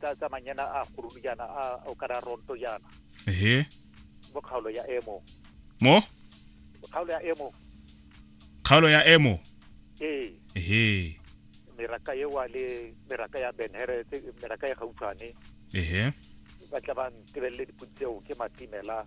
tsa tsa manyana a gurulu jaana a o ka ra ronto jaana ehe mo kgaolo ya emo mo kgaolo ya emo kgaolo ya emo ee ehe meraka e wa le meraka ya benhere tse meraka e gautshwane ehe ba tla ba ntebelele dipodi tseo ke matimela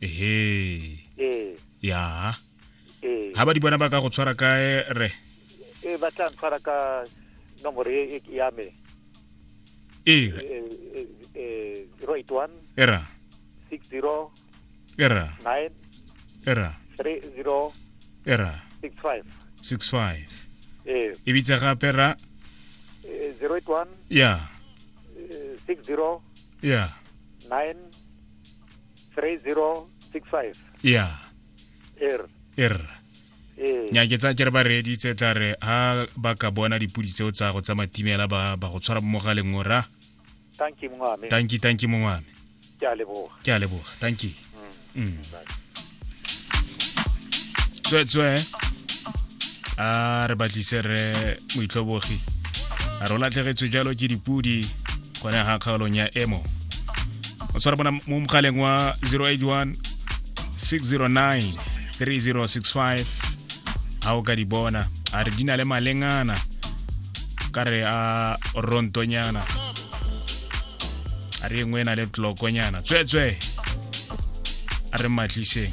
ehe ee ya ee ha ba di bona ba ka go tshwara kae re ee ba tla ntshwara ka nomoro e e- ya me ee re Eh, eh, eh, 081 e ra 60 e ra 9 e ra 30 e ra 65 six five eh e bitse gape ra eh, 081 ya eh, 60 ya 9 3065 ya er er ee. nya ke tsa ke re ba reeditse tla re ha ba ka bona dipudi tseo tsa go tsa matimela ba ba go tshwara mo mogaleng o ra thank you mongwame thank you thank you mongwame ke a leboga ke a leboga thank you mm. mm. tswetswe a re batlise re moitlhobogi a re o latlhegetswe jalo ke dipudi gone ga kgaolong ya emo o tshwara bona mo mogaleng wa 081 609 3065 ga o ka di bona a re di na le malengana ka re a rontonyana a re e nngwe e na le tlokonyana tsweetswee a re mmatliseng